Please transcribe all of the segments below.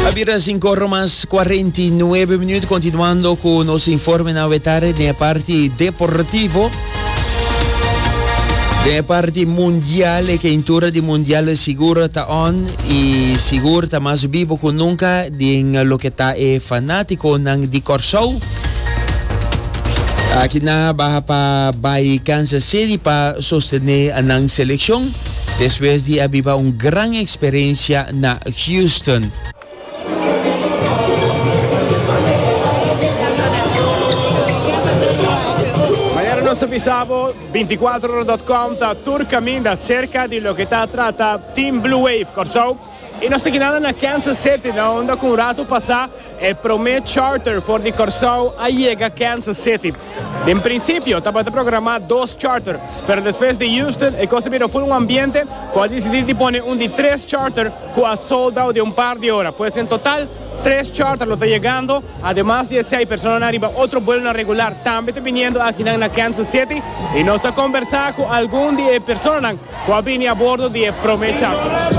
A bira sin corro mas 49 minuut continuando cu nos informe na wetare de parti deportivo. De parti mundial, e keintura di mundial sigur ta on y sigur ta mas vivo cu nunca din lo que ta e fanático nan di Corsou. Aki na baha pa bay Kansas City pa sostene nan seleccion. despues di a biba un gran experiencia na Houston. Manera nos a bisa bo, 24ora.com ta tur caminda cerca di loke ta trata Team Blue Wave Curaçao. I nos ta keda na Kansas City na unda ku un ratu pasá e promé charter for di Kòrsou a yega Kansas City. Den prinsipio tabata programá dos charter, pero despues di Houston e kos a bira ful un ambiente ku a disidí di pone un di tres charter ku a sold out den un par di ora. Pues en total tres charter lo ta yegando, ademas di esei personanan riba otro buelonan regular tambe ta biniendo akinan na Kansas City i nos a kombersá ku algun di e personanan Cu a bini a bordo di e prome charter.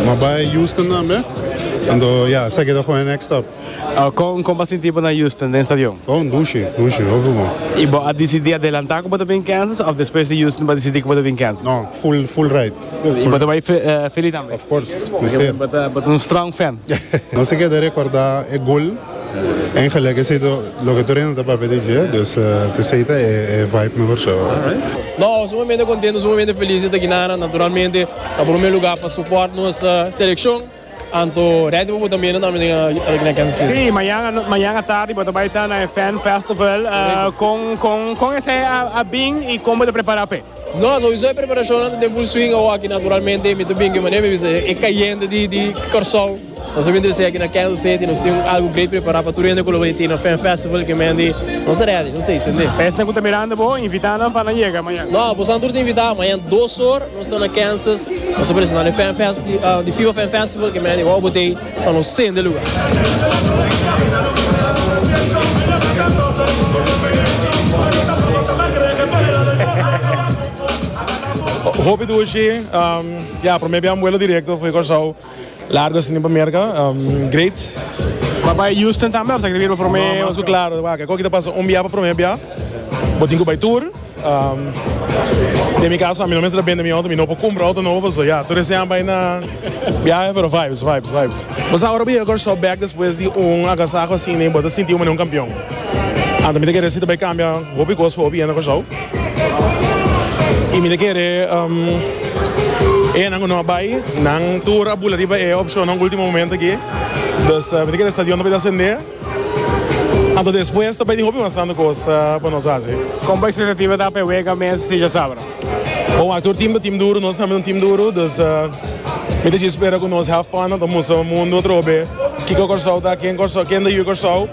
Ma bai Houston dan be? Anto ya, seki ta gooi next stop. Oh, con, con bo a sinti bo na Houston den stadion? Oh, un dushi, dushi, hopi bon. Y bo a dicidi adelanta cu bo ta bin Kansas of despues di Houston bo a dicidi cu bo ta bin Kansas? No, full, full ride. Y bo ta bai Philly tambe? Of course, mester. Bo ta un strong fan. No se keda recorda e gol. En gelijk esei to loke tur hende ta papia di dje, dus t'esei ta e vibe mehor show. Nos sumamente contento, sumamente feliz di ta aquí nan. Naturalmente na prome lugar pa support nos seleccion, anto ready pa bo ta mira tambe aki na Kansas City. Sí, mañana mañana tardi bo ta bai ta na e Fan Festival. Correcto. Con con con esei a bin y con bo ta prepara p'e? Nos a usa e preparashonnan den full swing awaki. Naturalmente mi ta bin kue manera mi bisa e kayente di Kòrsou. Nos a bin trese aki na Kansas City. Nos tin un algu great prepará pa tur hende ku lo bai tin na Fan Festival. Ke mendi nos ta rèdi, nos ta hasi esei. Esnan ku ta mirando bo, invitá nan pa nan yega mañan. No, boso nan tur ta invitá. Mañan dos or nos ta na Kansas. Nos ta presentá nan e Fan Fest di FIBA Fan Festival. Ke mendi wou bo ta ei. Ta nos sende lugar. Hopi dushi ya prome biaha mbuelo directo fo'i Corsou largo asina pa Merca great. Bo a bai Houston tambe of sa quiere bira pa prome. No no nos cu claro waak e coki ta pasa un biaha pa prome biaha bo tin cu bai tour. Den mi casa mi no mester ta bende mi auto, mi no por cumpra auto nobo pasobra ya tur ese aña bay na biahe pero vibes vibes vibes. Bo sa ora bo yega Kòrsou bek despues di un agasaho asina y bo ta sinti bo manera un campeon. Anto mi ta kere si ta bay cambia hopi cos pa hopi hende na Kòrsou y mi ta kere enan cu no a bay nan tur a bula riba e opcionnan ultimo momento aki. Dus mi ta kere e stadion ta bay ta asende. Anto despues ta bay tin hopi mas santo cos pa nos haci. Con bo expectativa ta pa e wega mes si dja sabra? Bon, atur team ta team duro, nos tambe un team duro, dus mi ta dje spera cu nos have fun, ta mustra mundo atrobe kico Corsou ta, ken Corsou, ken ta yu Corsou,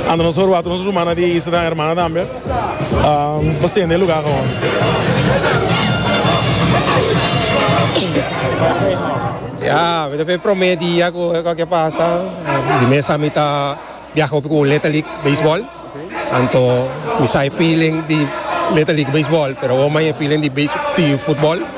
anto nos ta roba tur nos rumannan di Isla Gran Hermana tambe, pa sende e lugar awor. Ya, mi ta fe e prome dia cu e cosa ke pasa. Di mes a mi ta biaha hopi ku Little League Beisbòl. Anto mi sa e feeling di Little League Beisbòl, pero awor mas e feeling di futbòl.